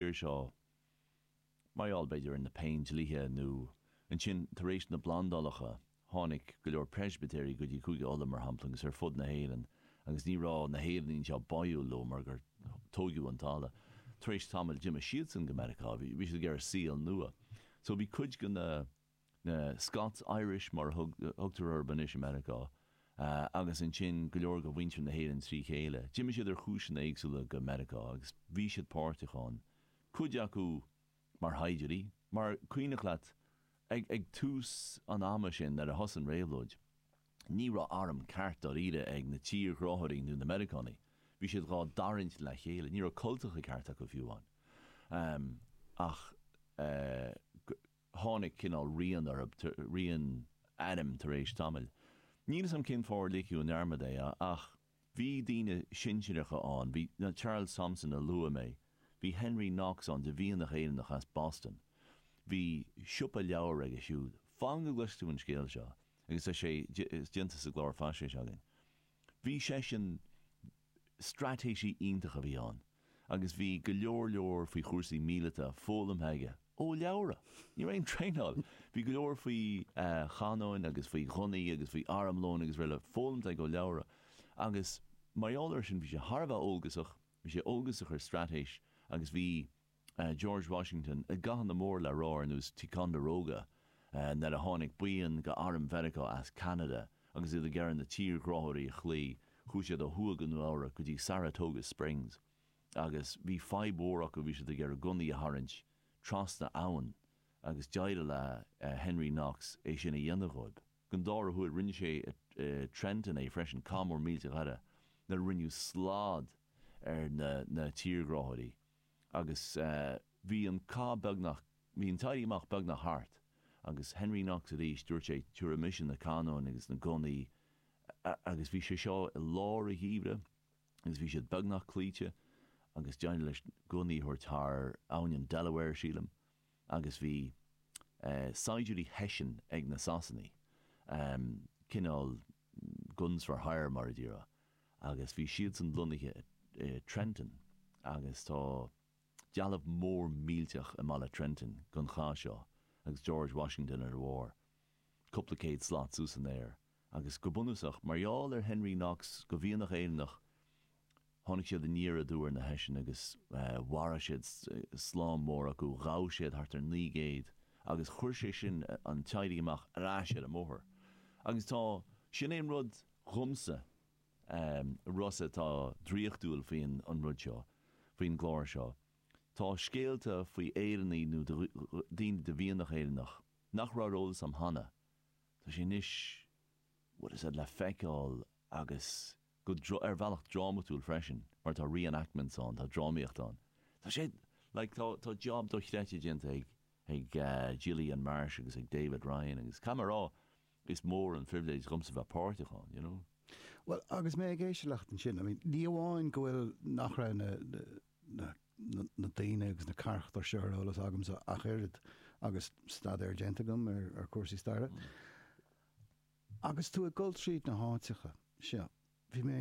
iar seo. Mar gheall, b'fhéidir, ar na Péindlíthe, nó ansin, tar éis na bplandálacha, tháinig go leor Preispitéirigh go dtí Cúige Uladh, mar shampla, agus ar fud na hÉireann, agus ní raibh na hÉireannaigh anseo báúil leo, mar gur tóigeadh an talamh. Tar éis tamaill, d'imigh siadsan go Meiriceá. Bhí siad ag iarraidh saol nua. So, bhí cuid de na. na Scots-Irish, mar a thugtar orthu anois, i Meiriceá, agus ansin go leor de mhuintir na hÉireann trí chéile. D'imigh siad ar chúiseanna éagsúla go Meiriceá agus bhí siad páirteach ann, cuid acu mar shaighdiúirí, mar is cuimhneach leat ag tús an ama sin nuair a thosaigh an réabhlóid, ní raibh arm ceart dáiríre ag na tírghráthóirí nó na Meiriceánaigh, bhí siad dhá dtarraingt le chéile, ní raibh cultacha cearta acu fiú ann. Ach. tháinig cineál riar orthu, riar airm tar éis tamaill. Níl 'fhios a'm cén fáth ar ligeadh i ndearmad é ach bhí daoine sinsireacha ann, bhí Charles Thomson a luaigh mé, bhí Henry Knox ann de mhianach Éireannach as Boston, bhí siopa leabhar aige siúd. Fan go gcloisfidh tú an scéal seo agus tá sé déanta sa gclár faisnéise againn. Bhí seisean, straitéisí iontach a bhí ann agus bhí go leor leor faoi chúrsaí míleata foghlamtha aige ó leabhra. Ní raibh aon traenáil. Bhí go leor faoi chanónacha agus faoi ghunnaí agus faoi armlón agus rl foghlamtha aige ó leabhra agus mar gheall air sin bhí sé thar a bheith eolgasach. Bhí sé óg agus a chuid straitéis agus bhí George Washington i gcathanna mór le rá ar nós Ticonderoga nuair a tháinig buíon de arm Mheiriceá as Ceanada agus iad ag iarraidh na tírghráthóirí a chloí. Chuaigh siad ó thuaidh go Nua Eabhrac go dtí Saratoga Springs agus bhí fadhb mhór acu, bhí siad ag iarraidh gunnaí a tharraingt trasna abhann agus d'éirigh le Henry Knox é sin a dhéanamh dhóibh. An dara huair, rinne sé i Trenton é freisin, cath mór millteach eile nuair a rinneadh slad ar na tírghráthóirí agus bhí an cath beagnach, bhí an t-éirí amach beagnach thart agus Henry Knox arís, dúirt sé, tabharfaidh mise na canóin agus na gunnaí agus bhí sé seo i lár an gheimhridh agus bhí siad beagnach cloíte agus d'éirigh leis gunnaí a thabhairt thar abhainn an Delaware, sílim. agus bhí saighdiúirí Hessian ag na Sasanaigh, cineál guns for hire mar a déarfá, agus bhí siadsan lonnaithe i Trenton agus tá dealbh mór millteach i mbaile Trenton don chath seo agus George Washington ar a bharr. cúpla céad slat suas san aer, agus go bunúsach, mar gheall ar Henry Knox, de mhianach Éireannach, tháinig siad aniar aduaidh ar na Hessian agus mharaigh siad slám mór acu, ghabh siad thart ar naoi gcéad, agus chuir sé sin an t-éirí amach ar ais ar an mbóthar. Agus tá, sin é an rud dhomsa, a Rossa, atá draíochtúil faoin an rud seo, faoin gclár seo, tá scéalta faoi Éireannaigh nó daoine de mhianach Éireannach, nach raibh ar eolas am cheana, tá sé anois, bhuel, is iad le feiceáil agus go, ar bhealach drámatúil freisin mar tá re-enactments ann, tá drámaíocht ann. Tá sé, like, tá, tá job dochreidte déanta ag, ag Gillian Marsh agus ag David Ryan agus caithfidh mé a rá, Is mór an phribhléid dhomsa bheith páirteach ann, you know. Bhuel, agus mé ag éisteacht leat ansin, I mean, ní amháin go bhfuil, nach raibh na, na, na, na, na daoine agus na carachtair seo ar eolas agamsa ach oiread agus staidéar déanta agam ar, ar chúrsaí staire. Agus tú ag dul tríd na háiteacha seo, bhí mé,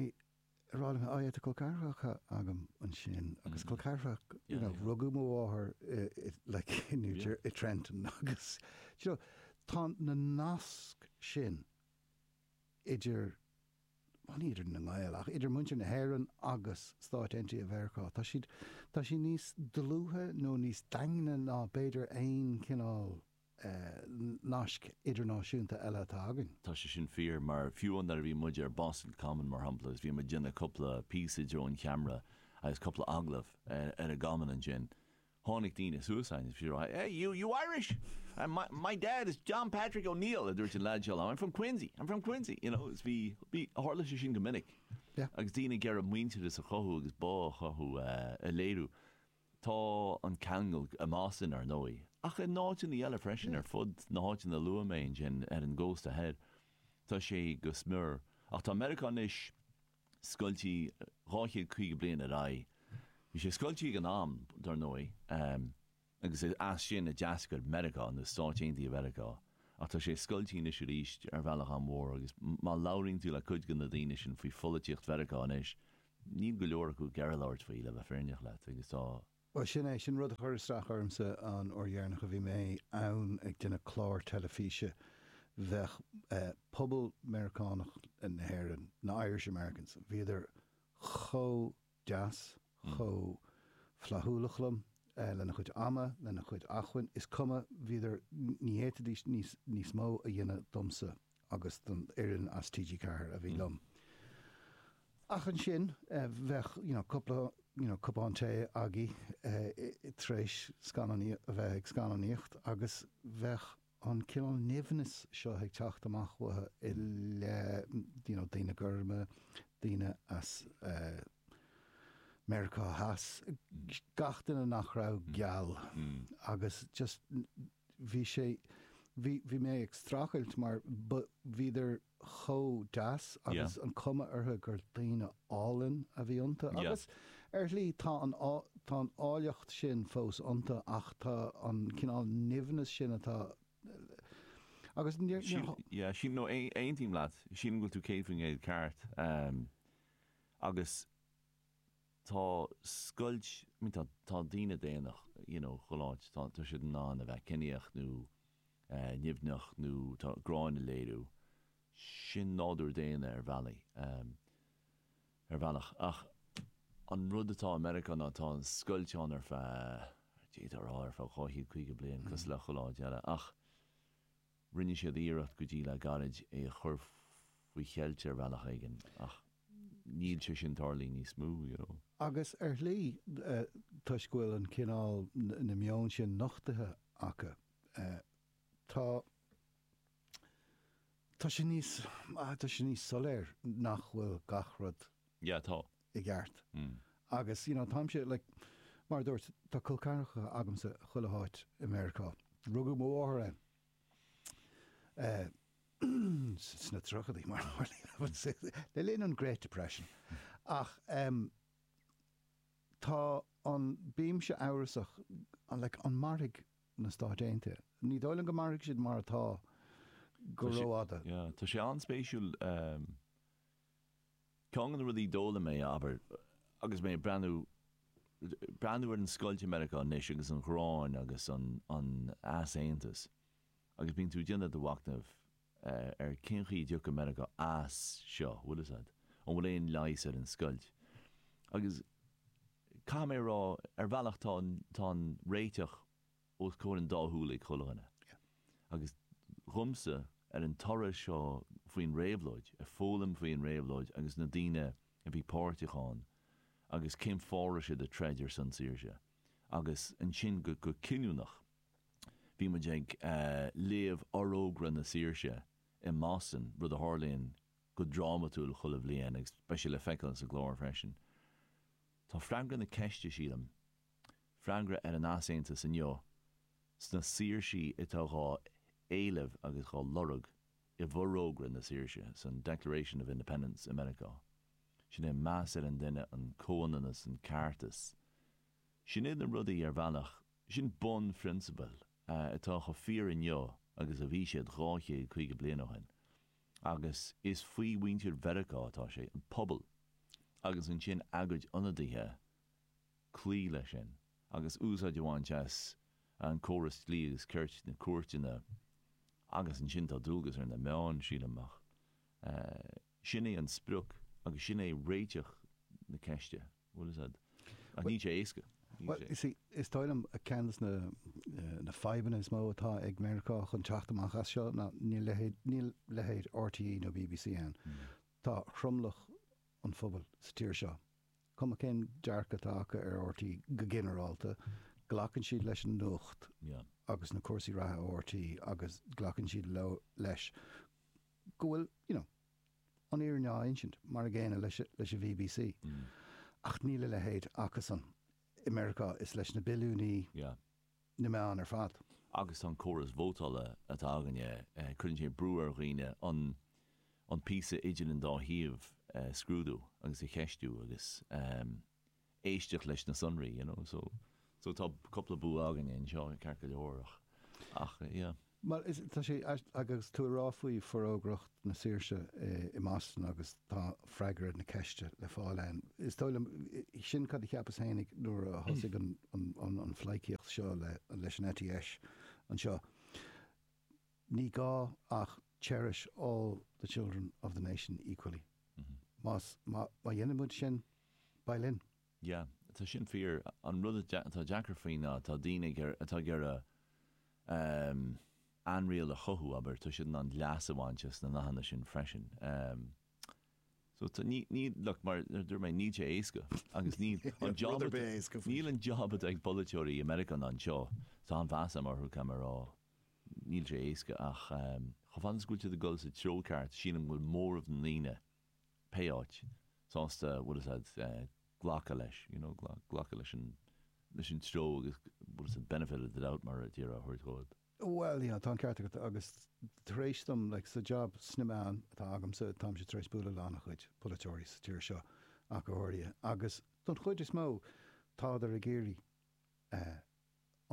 Tá col ceathracha agam ansin agus col ceathracha, you know, rugadh mo mháthair like in New Jersey, in Trenton agus, do you know, tá na naisc sin idir, bhuel ní idir na Gaeil ach idir muintir na hÉireann agus Stáit Aontaithe Mheiriceá, tá siad, tá siad níos dlúithe nó níos daingne ná b'fhéidir aon chineál, naisc idirnáisiúnta eile atá againn. Tá sé sin fíor, mar fiú nuair a bhí muid ar Boston Common, mar shampla, agus bhí muid ag déanamh cúpla píosa i dtreo an cheamara agus cúpla agallamh ar an gCommon ansin, tháinig daoine suas a'inn agus bhí siad á rá, Hey, you, you Irish? My, my dad is John Patrick O'Neill, a dúirt an leaid seo liom, I'm from Quincy, I'm from Quincy, you know, is bhí, bhí, tharla sé sin go minic. Yeah. Agus daoine ag iarraidh muintearas a chothú agus bá a chothú, a léiriú. Tá an ceangal i mBoston, ar ndóigh, ach in áiteanna eile freisin ar fud na háiteanna a luaigh mé ansin ar an gcósta thoir. Tá sé go smior. Ach tá Meiriceá anois scoiltí dhá chéad caoga bliain ar aghaidh. Bhí sé scoiltí ag an am, dar ndóigh, agus is as sin a d'eascair Meiriceá, nó Stáit Aontaithe Mheiriceá. Ach tá sé scoiltí anois arís ar bhealach an-mhór, agus má labhraíonn tú le cuid de na daoine sin faoi pholaitíocht Mheiriceá anois, Níl go leor acu ag iarraidh labhairt faoi, le bheith fírinneach leat, agus tá. Bhuel, sin é. Sin rud a chuir isteach ormsa an uair dheireanach a bhí mé ann ag déanamh clár teilifíse. Bhí pobal Meiriceánach na hÉireann, na Irish Americans, bhíodar chomh deas, chomh flaithiúlach liom, lena chuid ama, lena chuid acmhainn, is cuma, bhíodar, ní fhéadfaidís níos mó a dhéanamh domsa agus don fhoireann as TG4 a bhí liom. Ach ansin, bheadh cúpla cupán tae againn tar éis a bheith ag scannánaíocht agus bheadh an cineál nimhneas seo ag teacht amach uathu i leith daoine gorma, daoine as Meiriceá Theas, gach duine nach raibh geal agus just. bhí sé, bhí, bhí mé ag strachailt mar ba, bhíodar chomh deas Yeah. agus an cuma orthu gur daoine álainn a bhí iontu Yeah. agus ar shlí tá an, tá an áilleacht sin fós iontu ach tá an cineál nimhneas sin atá agus níor, Sílim, níor yeah, sílim, no, aon- aontaím leat, sílim go bhfuil tú céad faoin gcéad ceart. Em, agus. Tá scoilt, I mean tá, tá daoine daonna, you know, galánta, tá, tá siad in ann a bheith ciníoch nó eh nimhneach nó tá, gráin a léiriú, sin nádúr daonna ar bhealaí, em, ar bhealach ach an rud atá i Meiriceá ná tá an scoilt ann ar feadh, d'fhéadfá a rá ar feadh dhá chéad caoga bliain cosúil le chuile áit eile ach, Rinne siad iarracht go dtí le gairid é a chur faoi cheilt ar bhealach éigin ach níl sé sin ag tarlú níos mó, you know. Agus ar shlí, toisc go bhfuil an cineál, na meon sin nochtaithe acu, tá, tá sé níos, tá sé níos soiléir nach bhfuil gach rud Yeah, tá. i gceart. Agus, you know, táimse, like, mar a dúirt, tá col ceathracha agamsa chuile háit i Meiriceá. Rugadh mo mháthair ann eh sna tríochadaí, mar a tharlaíonn, I would say, le linn an Great Depression. Ach em tá an, bímse amhrasach, like, an mairfidh na Stáit Aontaithe? Ní dóigh liom go mairfidh siad mar atá go rófhada. Yeah, tá sé an-spéisiúil em. Ceann de na rudaí a d'fhoghlaim mé, abair, agus mé ag breathnú, breathnú ar an scoilt i Meiriceá anois agus an ghráin agus an, an easaontas agus bíonn tú ag déanamh do mhachnaimh ar cén chaoi a dtiocfadh Meiriceá as seo, bhfuil 'fhios a'd, an bhfuil aon leigheas ar an scoilt. Agus caithfidh mé a rá, ar bhealach tá an, tá an réiteach. os comhair an dá shúl ag chuile dhuine. Agus dhomsa, ar an turas seo faoin réabhlóid, ag foghlaim faoin réabhlóid agus na daoine a bhí páirteach ann agus cén fáth a raibh siad ag troid ar son saoirse. Agus ansin go cinniúnach, bhí muid ag léamh Fhorógra na Saoirse i mBoston, rud a tharlaíonn go drámatúil chuile bhliain agus beidh sé le feiceáil sa gclár freisin. Tá freagra na ceiste, sílim. Freagra ar an easaontas inniu sna saoirsí atá dhá éileamh agus dhá lorg i bhforógra na saoirse, san Declaration of Independence i Meiriceá. Sin é an meas ar an duine, an comhionannas, an ceartas. Sin iad na rudaí ar bhealach, sin bunphrionsabail atá chomh fíor inniu agus a bhí siad dhá chéad caoga bliain ó shin. Agus is faoi mhuintir Mheiriceá atá sé, an pobal, agus ansin a gcuid ionadaithe cloí leis sin agus úsáid a bhaint as an córas dlí agus cirt, na cúirteanna, agus ansin tá dualgas ar na meáin, sílim, ach sin é an sprioc agus sin é réiteach na ceiste, bhuel, is ea, ach níl sé éasca, níl sé. Is dóigh liom ceann de na fadhbanna is mó atá ag Meiriceá chun teacht amach as seo ná níl leithéid RTÉ nó BBC ann. Tá tromlach an phobail sa tír seo Cuma cén dearcadh atá acu ar RTÉ go ginearálta, glacann siad leis an nuacht agus na cúrsaí reatha ó RTÉ agus glacann siad leo, leis, go bhfuil, you know, an fhírinne á insint, mar a chéanna leis an BBC. Ach níl a leithéid acusan i Meiriceá is leis na billiúnaí. na meáin ar fad. Agus tá an córas vótála atá againne, cuireann sé brú ar dhaoine an píosa idir an dá thaobh a scrúdú agus a cheistiú agus éisteacht leis na sonraí, you know. So tá cúpla bua againne anseo, ceart go leor, ach, yeah. Bhuel, is, tá sé, agus tú ag rá faoi Forógra na Saoirse i Meiriceá agus tá freagra na ceiste le fáil ann, is dóigh liom, sin cad a cheapas féin nuair a thosaigh an phleidhcíocht seo leis an eite dheis anseo, ní gá ach cherish all the children of the nation equally. Más, má dhéanann muid sin, beidh linn. Yeah, tá sin fíor. An rud atá deacair faoi ná tá daoine ag iarraidh, atá ag iarraidh ehm ainriail a chothú, abair, tá siad in ann leas a bhaint as na nathanna sin freisin. Ehm so tá, ní, ní, look, mar a dúirt mé, níl sé éasca agus níl an job atá, níl an job atá ag polaiteoirí i Meiriceá ná anseo, tá an-mheas agam orthu, caithfidh mé a rá, níl sé éasca ach ehm chomh fada is go bhfuil siad ag dul sa treo ceart sílim go bhfuil móramh na ndaoine, pé áit, sásta bhfuil 'fhios a'd glacadh leis, you know, glacadh leis an, leis an treo agus bhfuil 'fhios a'd benefit of the doubt mar a déarfá a thabhairt dhóibh. Bhuel, yeah, tá an ceart agat agus tar éis dom, like, sa job sna meáin atá agamsa, táimse tar éis bualadh le ana-chuid polaiteoirí sa tír seo ach go háirithe agus don chuid is mó tádar ag iarraidh eh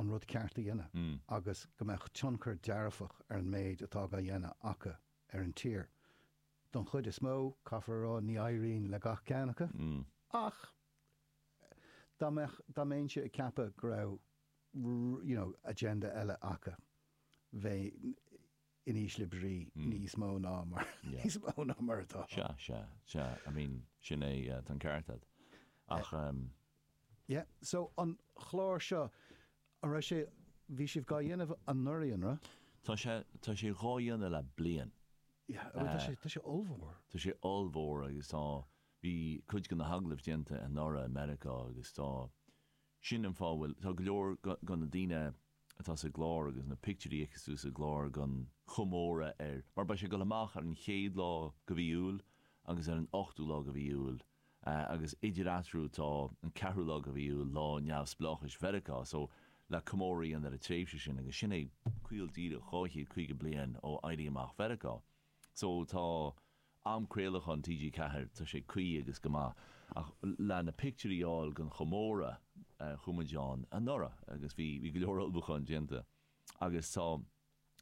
an rud ceart a dhéanamh agus go mbeadh tionchar dearfach ar an méid atá á dhéanamh acu ar an tír. Don chuid is mó, caithfear a rá, ní éiríonn le gach ceann acu. Ach dá mbeinnse ag ceapadh go raibh, you know, agenda eile acu, bheinn in ísle brí níos mó ná mar, níos mó ná mar atá. Sea, sea, sea, I mean, sin é, tá an ceart agat. Ach. Yeah, so an chlár seo, An raibh sé, bhí sibh dhá dhéanamh anuraidh, an raibh? Tá sé, tá sé dhá dhéanamh le bliain. Yeah, bhuel tá sé, tá sé ollmhór. Tá sé ollmhór agus tá, bhí cuid go na hagallaimh déanta anuraidh i Meiriceá agus tá, sin an fáth a bhfuil, tá go leor go na daoine atá sa gclár agus na pictiúirí a fheiceas tú sa gclár gon chomóradh ar, mar beidh sé ag dul amach ar an chéad lá go mhí Iúil agus ar an ochtú lá go mhí Iúil. Agus idir eatarthu tá an ceathrú lá go mhí Iúil, Lá Neamhspleáchais Mheiriceá, so le comóradh a dhéanamh ar an tréimhse sin agus sin é caol díreach 250 bliain ó Éirí Amach Mheiriceá. So tá am craolacháin TG4, tá sé cuí agus go maith. Ach le na pictiúirí a fháil gon chomóradh, chuaigh muid ann anuraidh agus bhí go leor ullmhúcháin déanta agus tá,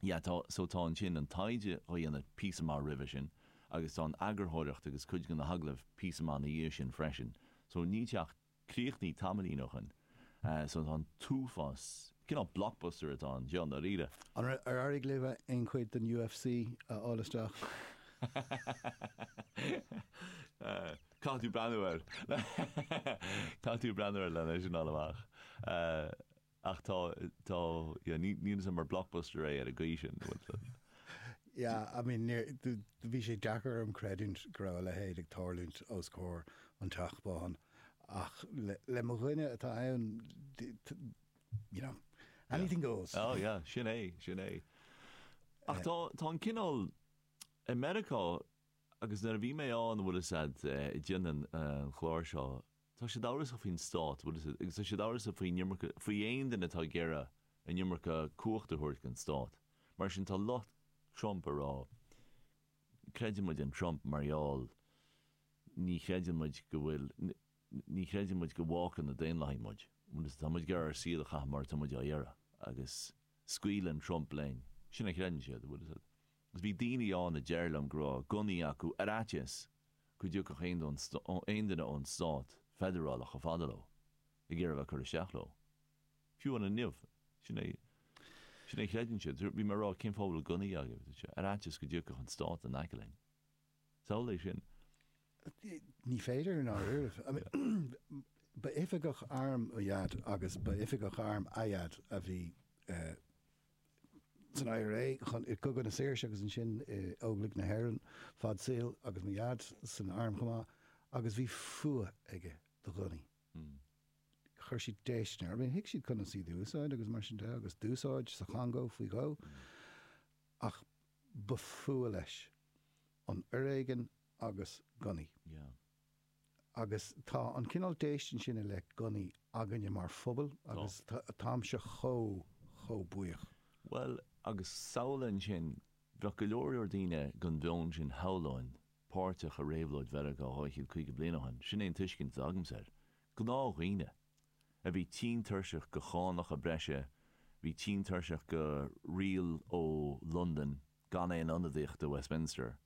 Yeah, tá, so tá ansin an taighde dhá dhéanamh píosa maith roimhe sin agus tá an eagarthóireacht agus cuid go na hagallaimh píosa maith ina dhiaidh sin freisin. So níl sé ach críochnaithe tamaillín ó shin. So tá an t-uafás, cineál blockbuster atá ann, i ndáiríre. An raibh, ar éirigh libh aon chuid den UFC a fháil isteach? Caithfidh tú breathnú air. Caithfidh tú breathnú air len é sin a fháil amach. Ach tá, tá, yeah, ní, ní shin mar blockbuster é ar an gcaoi sin, bhfuil fhios agat? Yeah, I mean, níor, do, do, bhí sé deacair orm a chreidiúint go raibh a leithéid ag tarlúint os comhair an Teach Bán, ach le, le mo dhuine atá ann, do, do, you know, Yeah. anything goes. Oh, yeah, sin é, sin é. Ach tá, tá an cineál, i Meiriceá, agus nuair a bhí mé ann, bhfuil fhios agat, eh, déanann an chlár seo, Tá siad amhrasach faoin stát, bhfuil fhios agat, agus tá siad amhrasach faoin iomarca, faoi aon duine atá ag iarraidh an iomarca cumhachta a thabhairt gon stát. Mar sin, tá lucht Trump ag rá, creideann muid in Trump mar gheall, ní chreideann muid go bhfuil, ní chreideann muid go bhfágfaidh na Daonlathaigh muid, bhfuil fhios agat, tá muid ag iarraidh ár saol a chaitheamh mar atá muid dhá iarraidh agus scaoileann Trump linn. Sin a chreideann siad, bhfuil fhios agat. Agus bhí daoine ann a déarfadh liom go raibh gunnaí acu ar fhaitíos go dtiocfadh aon duine ón stát feidearálach chomh fada leo ag iarraidh a bheith ag cur isteach leo. Fiú amháin inniu, sin é a chreideann siad. Bhí mé ag rá, cén fáth a bhfuil gunnaí agaibh? Ar fhaitíos go dtiocfadh an stát in aice linn. Samhlaigh é sin. Ní féidir, i ndáiríribh. Ba oifigeach airm mo dhaid agus ba oifigeach airm a dhaid a bhí san IRA, i gCogadh na Saoirse agus ansin i Óglaigh na hÉireann fad saoil agus mo dhaid san arm chomh maith agus bhí fuath aige do ghunnaí. Chuir siad déistin air. Thuig sé conas iad a úsáid agus mar sin de agus d'úsáid sa Chongó faoi dhó ach ba fuath leis an fhoiréigin agus gunnaí. Agus tá an cineál déistin sin i leith gunnaí againne mar phobal agus táimse chomh, chomh buíoch. Bhuel, agus samhlaigh ansin, bheadh go leor, leor daoine den mheon sin, shamhlóinn, páirteach i réabhlóid Mheiriceá 250 bliain ó shin, sin é an tuiscint atá agamsa air. Gnáthdhaoine, a bhí tinn tuirseach de chánacha breise, bhí tinn tuirseach de riail ó Londain, gan aon ionadaíocht i Westminster,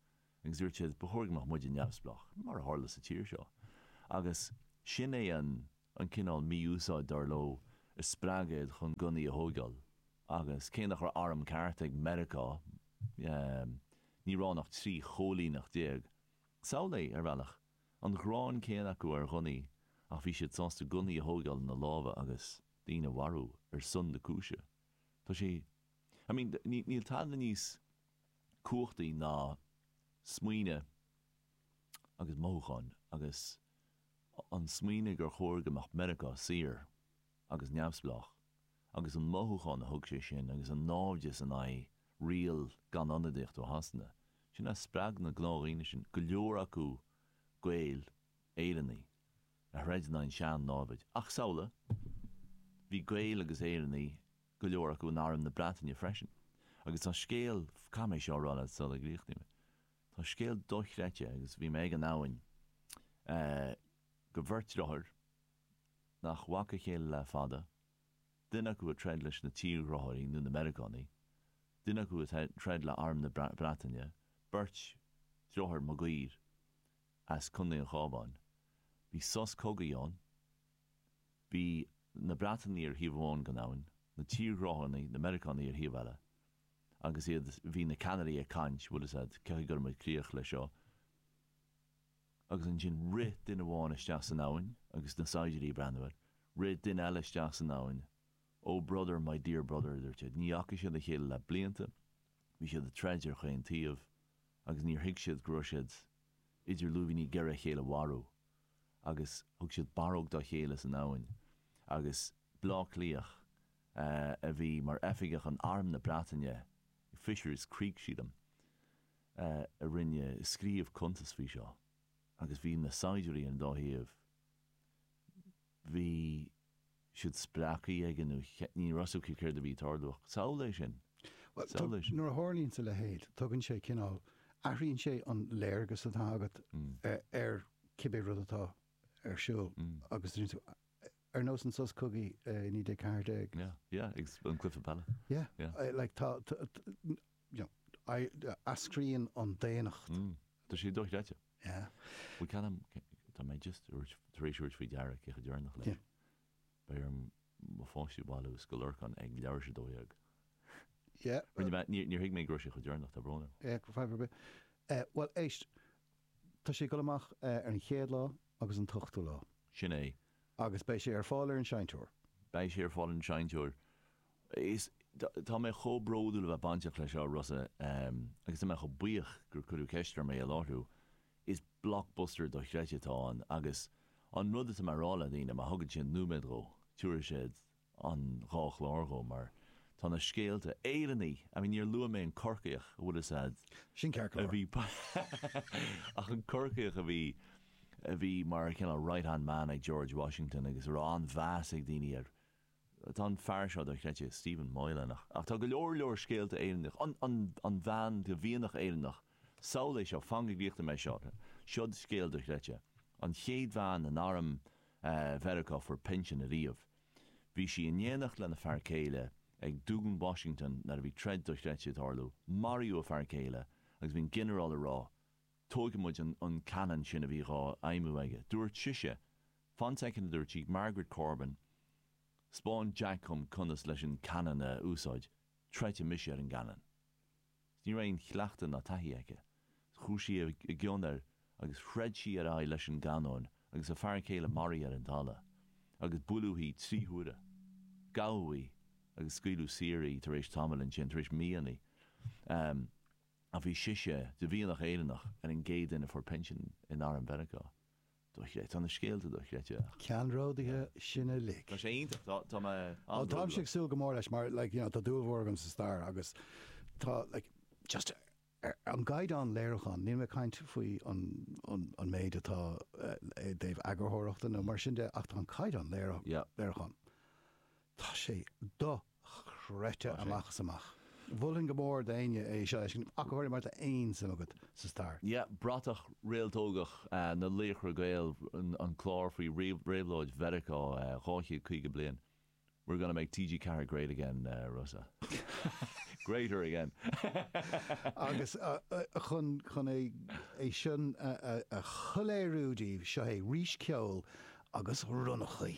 agus dúirt siad, ba chóir go mbeadh muide neamhspleách, mar a tharla sa tír seo. Agus sin é an cineál mí-úsáid, dar leo, a spreag iad chun gunnaí a thóigeáil. Agus cé nach raibh arm ceart ag Meiriceá, ní raibh ann ach trí choilíneacht déag. Samhlaigh, ar bhealach, an ghráin chéanna acu ar ghunnaí, ach bhí siad sásta gunnaí a thóigeáil ina lámha agus daoine a mharú ar son na cúise. Tá sé. I mean, níl tada níos cumhachtaí ná smaoineamh agus mothúcháin agus an smaoineamh gur chóir go mbeadh Meiriceá saor agus neamhspleách agus an mothúchán a thug sé sin agus an náimhdeas in aghaidh riail gan ionadaíocht ó Shasana, sin a spreag na gnáthdhaoine sin, go leor acu Gaeil, Éireannaigh, a throid in aghaidh an tsean-námhad. Ach, samhlaigh, bhí Gaeil agus Éireannaigh go leor acu in Arm na Breataine freisin, agus tá scéal, caithfidh mé seo a rá leat sula gcríochnaím é, tá scéal dochreidte agus bhí mé ag an abhainn de bheirt driotháir nach bhfaca a chéile le fada, duine acu ag troid leis na tírghráthóirí nó na Meiriceánaigh, duine acu ag troid le Arm na Breataine, beirt driotháir Maguire as Contae an Chábháin. Bhí sos cogaidh ann Bhí na Breatainigh ar thaobh amháin den abhainn, na tírghráthóirí, na Meiriceánaigh, ar thaobh eile. Agus iad, bhí na ceannairí ag caint, bhfuil a fhios agat, cén chaoi a gcuirfidh muid críoch leis seo? Agus ansin rith duine amháin isteach san abhainn agus na saighdiúirí ag breathnú air. Rith duine eile isteach san abhainn. Oh brother, my dear brother, a dúirt siad, ní fhaca siad a chéile le blianta, bhí siad ag troid ar chaon taobh agus níor thuig siad go raibh siad idir lúibíní ag iarraidh a chéile a mharú. agus thug siad barróg dá chéile san abhainn, agus Bleá Cliathach a bhí mar oifigeach in Arm na Breataine, Fisher's Creek, sílim, a rinne scríobh cuntas faoi seo, agus bhí na saighdiúirí ar an dá thaobh, bhí. siad spreagthaí ag an úth. Ní raibh 's acu céard a bhí ag tarlú ach samhlaigh é sin, Bhuel, samhlaigh é sin. nuair a tharlaíonns a leithéid, tugann sé cineál, athraíonn sé an léargas atá agat ar cibé rud atá ar siúl agus deir tú, ar nós an sos cogaidh i 1914, Yeah, yeah, agus an cluiche peile. yeah, Yeah. like tá, eascraíonn an daonnacht. Tá sé dochreidte. Bhuel, ceannaím, tá mé just tar éis thabhairt faoi deara cé chomh deireanach leis. Beidh orm mo pháistí a bhailiú i Scoil Lorcáin ag leathuair tar éis a dó dhéag. Rinne mé, níor thuig mé go raibh sé chomh deireanach, tá brón orm. Ó, fadhb ar bith. Bhuel, éist, tá sé ag dul amach ar an chéad lá agus an t-ochtú lá. Sin é. Agus beidh sé ar fáil ar an seinnteoir. Beidh sé ar fáil ar an seinnteoir. Is, tá mé chomh bródúil a bheith bainteach leis seo, Rossa, agus tá mé chomh buíoch gur cuireadh ceist orm é a láithriú. Is blockbuster dochreidte atá ann agus an rud atá mé a rá le daoine, má thugann siad nóiméad dhó, tiúrfaidh siad an dhá chlár dhó mar tá na scéalta, Éireannaigh! I mean, níor luaigh mé an Corcaíoch, an bhfuil 'fhios a'd, Sin ceart go leor. a bhí, ach an Corcaíoch a bhí, a bhí mar cineál right-hand man ag George Washington agus a raibh an-mheas ag daoine air. Tá an fear seo dochreidte, Stephen Moylan, ach tá go leor leor scéalta Éireannacha, an bhean de mhianach Éireannach, samhlaigh é seo, fan go gcríochnaím é seo, siod scéal dochreidte, an chéad bhean in arm Mheiriceá a fuair pinsean ariamh. Bhí sí in éineacht lena fear céile ag Dún Washington nuair a bhí troid dochreidte ag tarlú, maraíodh a fear céile agus bhí an ginearál ag rá, tóigfidh muid an canon sin a bhí dhá fheidhmiú aige. Dúirt sise, Fan soicind, a dúirt sí, Margaret Corbin, 'spáin Jack dhom conas leis an canon a úsáid, troidfidh mise ar an gcanon. Agus ní raibh aon chleachtadh ná taithí aici. Chuaigh sí i gcion air agus throid sí ar aghaidh leis an gcanon agus a fear céile maraithe ar an dtalamh. Agus buaileadh í trí huaire. Gabhadh í agus scaoileadh saor í tar éis tamaill ansin, tar éis míonna. a bhí sise de mhianach Éireannach ar an gcéad duine a fuair pinsean in arm Mheiriceá. Dochreidte. Tá na scéalta dochreidte ach. ceannródaithe sin uilig. Tá sé iontach. Tá, tá mé Ó táim an-bhródúil. ag súil go mór leis mar like you know tá dúil mhór agam sa stair agus tá like just ar an gcaighdeán léiriúcháin, níl mé ag caint faoi an, an, an méid atá eh, i dtaobh eagarthóireachta nó mar sin de ach tá an caighdeán léiriú- Yeah. léiriúcháin, tá sé do chreidte amach is amach. Mholfainn go mór d'éinne é seo a fheiscint, ach go háirithe má tá aon suim agat sa stair. Yeah, bratach réaltógach na Laochra Gael, an clár faoi réabhlóid Mheiriceá 250 bliain, we're gonna make TG ceathair great again Rossa, greater again. Agus chun é sin a shoiléiriú daoibh, seo é arís ceol agus ronnachaí.